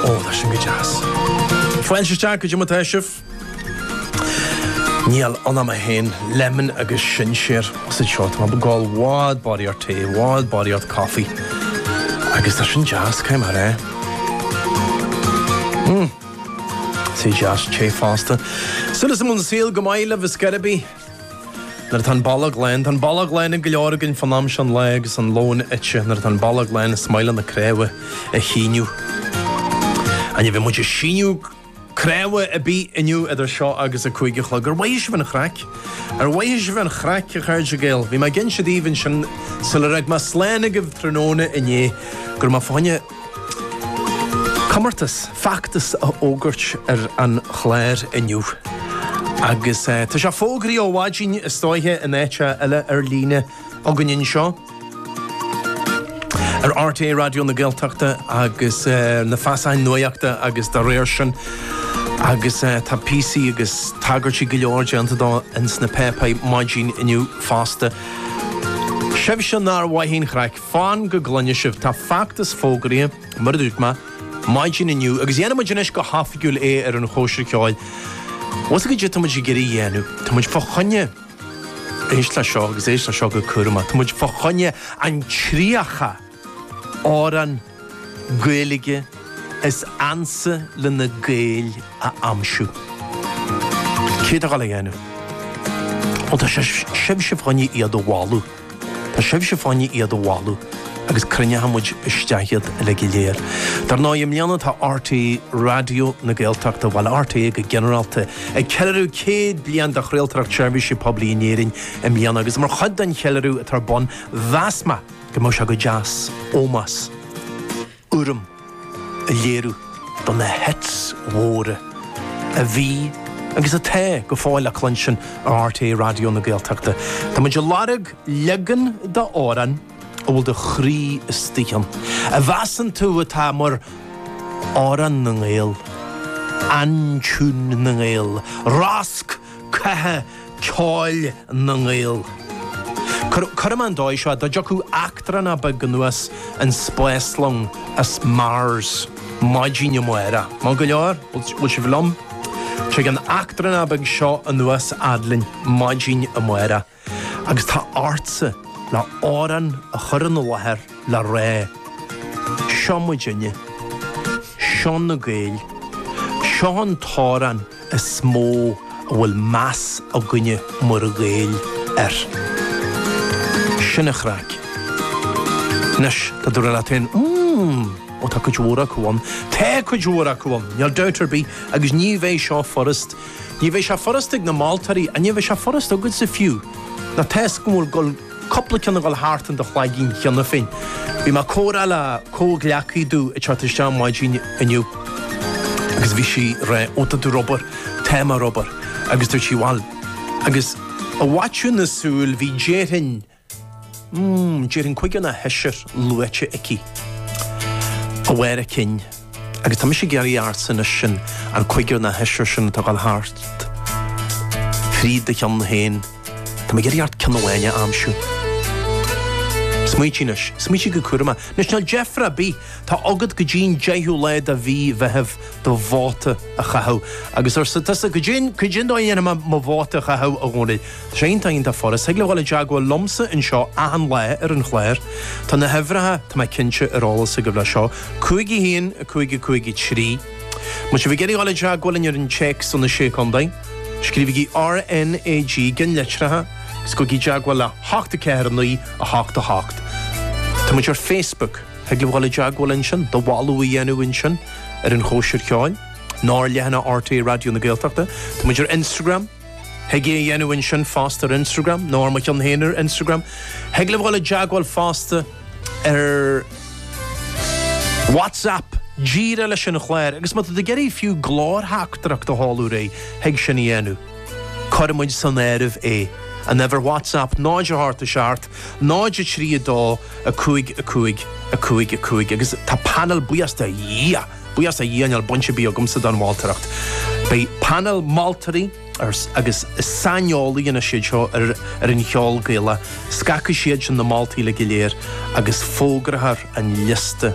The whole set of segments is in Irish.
Ó, tá sin go deas. Foilsithe isteach go dtí mo t-eisiamh. Níl ann am a haon, lemon agus sinséar sa tseó. Tá mé ag gabháil bhád bádaí ort tae, bhád bádaí ort coffee. Agus tá sin deas, cad é mar é? Mmm. Tae deas, tae fosta. Suas i mbun saoil go maith libh, a Sceiribí. Nuair atá an bolg lán, tá an bolg lán ag go leor againn fán am seo an lae agus an lón ite. Nuair atá an bolg lán, is maith le na cnámha a shíneadh. An bhfuil muid ag síneadh cnámha ar bith inniu idir seo agus a cúig a chlog? Ar mhothaigh sibh an chraic? Ar mhothaigh sibh an chraic, a chairde Gael? Bhí mé ag inse daoibh ansin sular fhág mé slán agaibh tráthnóna inné go raibh mé fá choinne Comórtas feachtas a fhógairt ar an Chláir inniu agus tá sé fógraithe ó mhaidin is dóiche in áit eile ar líne againn anseo ar RTÉ Raidió na Gaeltachta agus na feasacháin nuaíochta agus dá réir sin agus tá píosaí agus tagairtí go leor déanta dó ins na páipéir maidin inniu fosta. Sibhse nár mhothaigh an chraic! Fan go gcluine sibh, tá feachtas fógraithe, mar a dúirt mé, maidin inniu, agus dhéanfaidh muid anois go hoifigiúil é ar an Chóisir Cheoil. Agus cad é tá muid ag iarraidh dhéanamh, tá muid fá choinne, éist le seo agus éist le seo go cúramach, tá muid fá choinne an 30 amhrán Gaeilge is ansa le na Gaeil a aimsiú. Cé atá ag gabháil á dhéanamh? Bhuel, tá sibhse fá choinne iad a mholadh. Tá sibhse fá choinne iad a mholadh agus cruinneoidh muid isteach iad uilig go léir. Dar ndóigh, i mbliana tá RTÉ Raidió na Gaeltachta, bhuel RTÉ go ginearálta, ag ceiliúradh 100 bliain de chraoltóireacht seirbhíse poiblí in Éirinn i mbliana agus mar chuid den cheiliúradh atá ar bun mheas mé go mbeadh sé go deas ómós urraim a léiriú do na 'hits' mhóra a bhí agus atá go fóill le cluinstin ar RTÉ Raidió na Gaeltachta. Tá muid ag lorg leagan d'amhrán a bhfuil do chroí istigh ann, a mheasann tú atá mar Amhrán na nGael, Aintiún na nGael, Rosc catha ceoil na nGael. Cuirfidh mé an dóigh seo, dá dtiocfadh eachtrannach beag anuas an spáslong as Mars maidin amáireach, maith go leor, bhfuil sibh liom? Tig an t-eachtrannach beag seo anuas fhad linn maidin amáireach. Agus tá ortsa amhrán a chur ina láthair le rá, Seo muid inniu. Seo na Gaeil. Seo an t-amhrán is mó a bhfuil meas againne mar Ghaeil air. Sin an chraic. Anois, tá tú ag rá leat féin, Mmm, ó tá cuid mhór acu ann. Tá cuid mhór acu ann, níl dabht ar bith, agus ní bheidh seo furast. Ní bheidh sé furast ag na moltóirí, agus ní bheidh sé furast agatsa fiú, nó toisc go bhfuil cúpla ceann ag dul thart in do chloigín cheana féin. Bhí mé ag comhrá le comhghleacaí dubh ag teacht isteach maidin inniu agus bhí sí ag rá ó tá tú ar obair, tá mé ar obair agus dúirt sí bhuel agus i bhfaiteadh na súl bhí déarfainn, mm, déarfainn cúigear nó sheisear luaite aici, ó bharr a cinn, agus tá mise ag iarraidh ortsa anois sin, an cúigear nó sheisear sin atá ag dul thart fríd do cheann féin, tá mé ag iarraidh ort ceann amháin a aimsiú. Smaoitigh anois, smaoitigh go cúramach. Anois níl deifre ar bith, tá agat go dtí'n deichiú lá de mhí Mheithimh do vóta a chaitheamh. Agus arsa tusa, cad é cad é an dóigh a ndéanfaidh mé mo vóta a chaitheamh a Dhónaill. Tá sé iontach iontach furast. Thig libh dhul i dteagmháil liomsa anseo achan lá ar an chlár. Tá na huimhreacha, tá mé cinnte, ar eolas agaibh leis seo. 5 1 5 5 3. Má tá sibh ag iarraidh dhul i dteagmháil linn ar an téacs ó na Sé Chontae, scríobhaigí RNAG, i gceannlitreacha, agus gabhaigí i dteagmháil le hocht a ceathair a naoi a hocht a hocht. Tá muid ar Facebook. Thig libh dhul i dteagmháil ansin, do mholadh a dhéanamh ansin ar an chóisir cheoil, nó ar leathanach RTÉ Raidió na Gaeltachta. Tá muid ar Instagram. Thig é a dhéanamh ansin fosta ar Instagram nó ar mo cheann féin ar Instagram. Thig libh dul i dteagmháil fosta ar WhatsApp díreach leis an chláir, agus má tá tú ag iarraidh fiú glórtheachtaireacht a sheoladh, yeah, thig sin a dhéanamh. Cuirfidh muid san áireamh é an uimhir WhatsApp 0 8 7 0 3 2 5 5 5 5 agus tá painéal buíochas do Dhia! Buíochas do Dhia níl baint ar bith agamsa don mholtóireacht. Beidh painéal moltóirí agus saineolaithe anois iad seo ar an cheol Gaelach, scagfaidh siadsan na moltaí uilig go léir agus fógrófar an liosta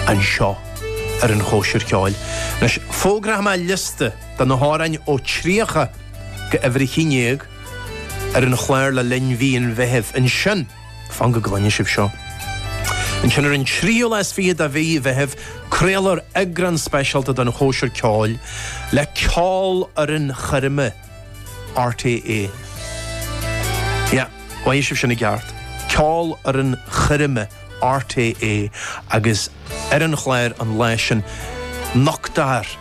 anseo ar an Chóisir Cheoil. Anois, fógróidh mé liosta de na hamhráin ó 30 go uimhir a haon déag ar an chlár le linn mhí an Mheithimh. Ansin. Fan go gcluine sibh seo. Ansin ar an 23ú de mhí Mheithimh craolfar eagrán speisialta den Chóisir Ceoil le Ceolfhoireann Choirme RTÉ. Yeah, mhothaigh sibh sin i gceart. Ceolfhoireann Choirme RTÉ agus ar an chláir an lá sin nochtfar.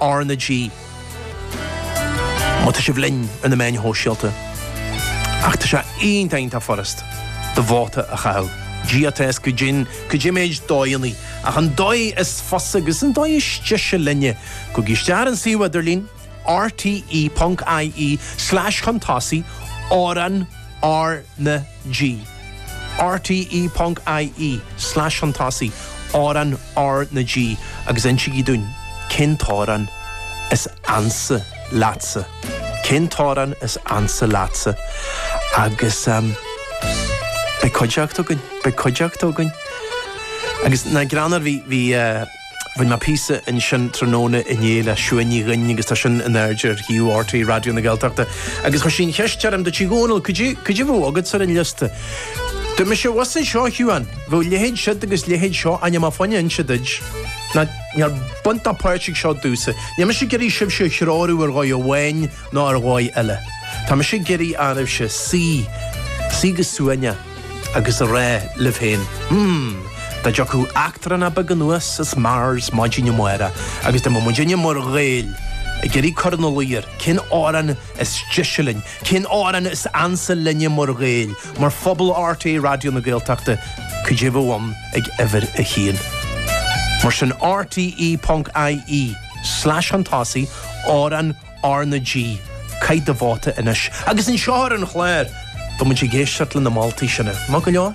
R na G Má tá sibh linn ar na meáin shóisialta ach tá sé iontach furast do vóta a chaitheamh. GRTS Go deimhin, go dtí méad dóigheannaí, ach an dóigh is fusa agus an dóigh is deise linne, gabhaigí isteach ar an suíomh idirlín, rte. ie, slais chun tosaigh, amhrán R na. G. RTÉ.ie, slais chun tosaigh, amhrán R na G agus insígí dúinn cén t-amhrán is ansa leatsa. Cén t-amhrán is ansa leatsa? Agus beidh cuideachta againn, beidh cuideachta againn. Agus an greann air, bhí, bhí, eh, Rinn mé píosa ansin tráthnóna inné le Siún Ní Dhuinn agus tá sin in airde ar shuíomh rte Raidió na Gaeltachta agus chuir sí an cheist orm, dúirt sí a Dhónaill, cad é a bheadh agat ar an liosta? Dúirt mise, bhuel seo a Shiún, bheadh leithéid siúd agus leithéid seo níl mé ag gabháil a inse daoibh. Níl baint ná páirt ag seo domhsa. Níl mise ag iarraidh sibhse a threorú ar dhóigh amháin ná ar dhóigh eile. Tá mise ag iarraidh oraibhse suí, suí go suaimhneach. agus a rá libh féin, Hmm, dá dtiocfadh eachtrán beag anuas as Mars maidin amáireach agus dá mbeadh muidinne mar Ghaeil ag iarraidh cur ina luí air cén amhrán is deise linn, cén amhrán is ansa linne mar Ghaeil, mar phobal RTÉ Raidió na Gaeltachta, caidé a bheadh againn ag uimhir a haon. Mar sin, rte.ie, slais chun tosaigh, amhrán, R na G, Caith do vóta anois. Agus anseo ar an chlár, tá muid ag éisteacht le na moltaí sin. Maith go leor?